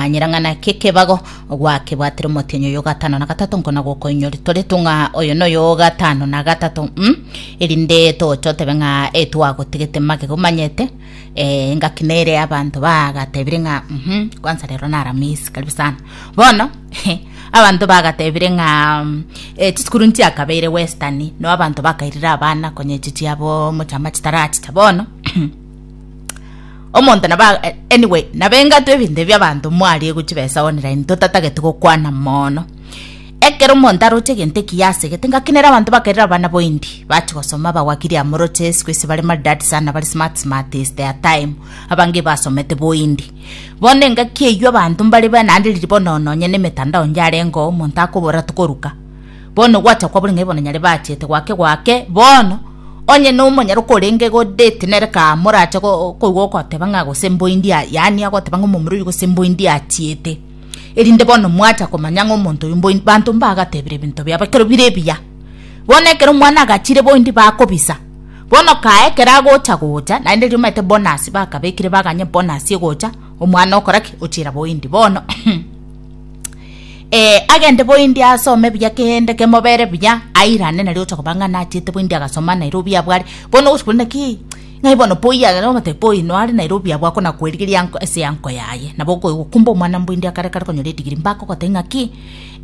Manyera ng'a naki ekebago gwakebwatire omotienyi oyo gatano na gatato nkona gokoinyori tore tung'a oyo noyo gatano na gatato mm? erinde toche otebe ng'a e twagotigete magego manyete eh, engaki nere abanto bagatebire ng'a mhm, kwanza rero naramisi karibu sana bono abanto bagatebire ng'a mm, eh, chisukuru nchiakabeire western no abanto bakairire abana konye chichiabo mochama chitarachicha bono omonto naba eh, anyway nabengato ebinto ebi abanto mwarie gochibesa online totatagete gokwana mono ekero omonto aroche egento ekiya asegete ngakinera abanto bakerera abana boindi bachi gosoma bagwakiria amoroche siku esi bare maridad sana bari smart smart is their time abange basomete boindi bono engaki eywo abanto mbare bana ndiriri bono nonye na emetandao njarengeo omonto akobora tokoruka Bono ogwacha kwabo ning'ai bono nyare bachete gwake gwake bono onye nomonyara okorenge igo date nere kaa morache koigwa ogoteba ng'a gose mboindi aa yaani agoteba ng'a omomura oyio gose mboindi achiete erinde bono mwacha komanya ng'a omonto oyio mboindi banto mbagatebire ebinto biabo ekero bire ebiya bono ekero omwana agachire boindi bakobisa bono kae ekero agocha gocha naende riria omanyete bonus bakabekire baganye bonus egocha omwana okora ki ochira boindi bono eh, agende boindi asome buya kende kemobere buya airane nario ocha koba ng'a nachiete boindi agasoma nairobi abware bono ogochi kore naki ng'ai bono poi agere omotebia poi noare nairobi abwo akona kwerigeria anko ase yanko yaye nabo okoe gokumba omwana mboindi akare kare konyora edigiri mbako goteba ng'aki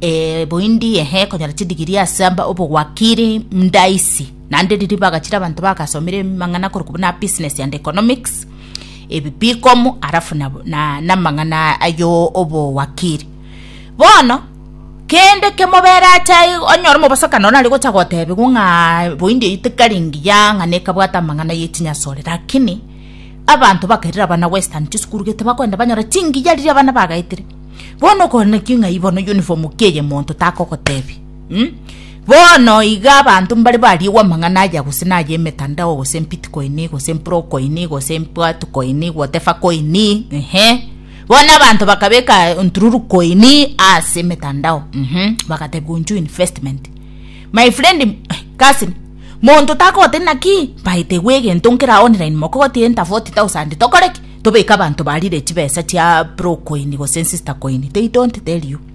eh, boindi ehe konyora chidigiri ase amba obogwakiri ndaisi naende riria bagachire abanto bagasomire mang'ana korokwa buna business and economics ebibikomu arafu na, na, namang'ana ayo obowakiri bono kende kemobere atai onyore mobosaka nona ari gocha gotebigwa ng'a boindi eyi tekari ngiya ng'a nekabwata amang'ana yetinyasore lakini abanto bakairire abana western chisukuru gete bakoenda banyora chingiya riria abana bagaetire bono okona ki ng'ai bono uniform ki eye monto takogotebi Bono iga abanto mbare bariigwe amang'ana aya gose naya emetandao gose embitikoini gose empurokoini gose embwatukoini whatever koini ehe bono abanto bakabeka entururukoini ase emetandao mhm bagateba gonchwa investment my friend cousin monto takogotebia naki mbae tegwe egento nkere aye online mokogotebi enter forty thousand tokore ki? tobeke abanto barire chibesa chia purokoini gose ensista koini they don't tell you.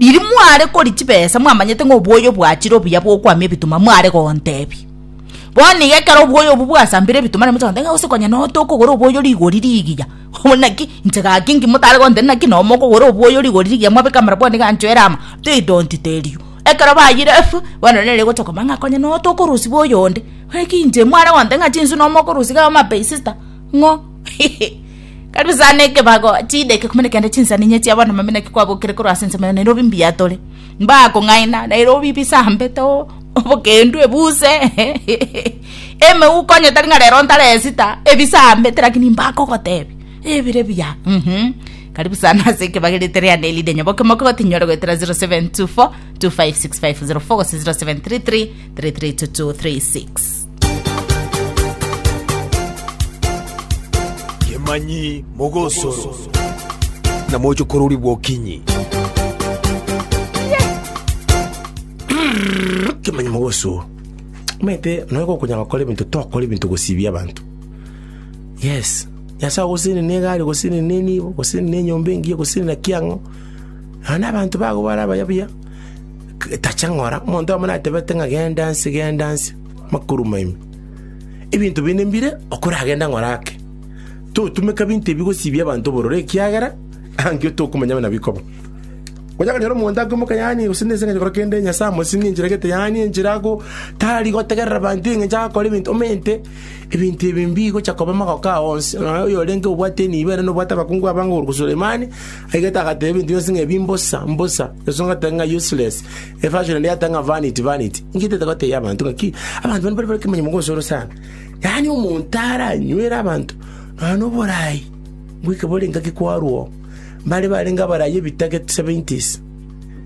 Riria mware koria chibesa mwamanyete ng'a obwoyo bwachire obuya bw'okoamia ebituma, mware gontebia. Bono iga ekero obwoyo obwo bwasambire ebituma naende mochia gontebia ng'a gose konya noe tokogora obwoyo rigori rigiya. Bono naki inche gaki inki motare gontebia naki noe mokogora obwoyo rigori rigiya mwabeka amarabwani iga anchwo ere amo? They don't tell you. Ekero bayire efu, bono nere egochia kobaa ng'a konya noe tokorosia bwa oyonde. Naki inche mware gontebia ng'a chinsu noe mokorusia iga, oh my sister, ng'o. Karibu sana ekebago chideke kumi nekende chinsaninye chia bono mami naki kwabokire korwa ase ensemo nero obi mbuya tore mbakong'aina nero obi bisambe to obokendu ebuse emeuko onye tari ng'a rero ntare esita ebisambe te lakini mbakogotebi ebire buya mhm karibu sana ase ekebago rite riane erinde nyaboke mokogote nyore goetera 0724 256504 gose 0733 332236 Kemanyi mogosoro. Na moche kororigwa okinyi. Kemanyi mogosoro. Omanyete nonya gokonyara gokora ebinto tokora ebinto gosibia abanto. Yes. Nyasae ogoseni ne egari ogoseni ne enibo ogoseni ne enyomba engiya ogoseni naki ang'o. Nonya na abanto bago bare abayabuya tacha ng'ora omonto oyomo natebete ng'a genda nse genda nse. Makuru maime. Ebinto binde mbire okoragende ng'ora ake. Totumeka binto ebi gosibia abanto obororo ekiagera ankio tokomanya buna bikoba. Onya konyora omonto akoimoka yaani gose nense engencho gokora kende Nyasae amosinge enchera egete yaani enchera ago tari gotegerera abanto engencho agakora ebinto omente ebinto ebi mbigocha koba magoko ao onsi. Nonya oyorenge obwate enibo ere nobwate abakungu abange okoruta Sulemani aigete agateba ebinto bionsi ng'a ebi mbosa mbosa. Yeso agateba ng'a useless. Efasioro ende yatanga vanity, vanity, inki etete goteebia abanto ng'aki? Abanto bane mbare nekemanyeromo gosoro sana, yaani omonto aranywere abanto nonya noboraai bw'ekabore ngaki kwarwo oo, mbare barenge abarai ebitaket seventies.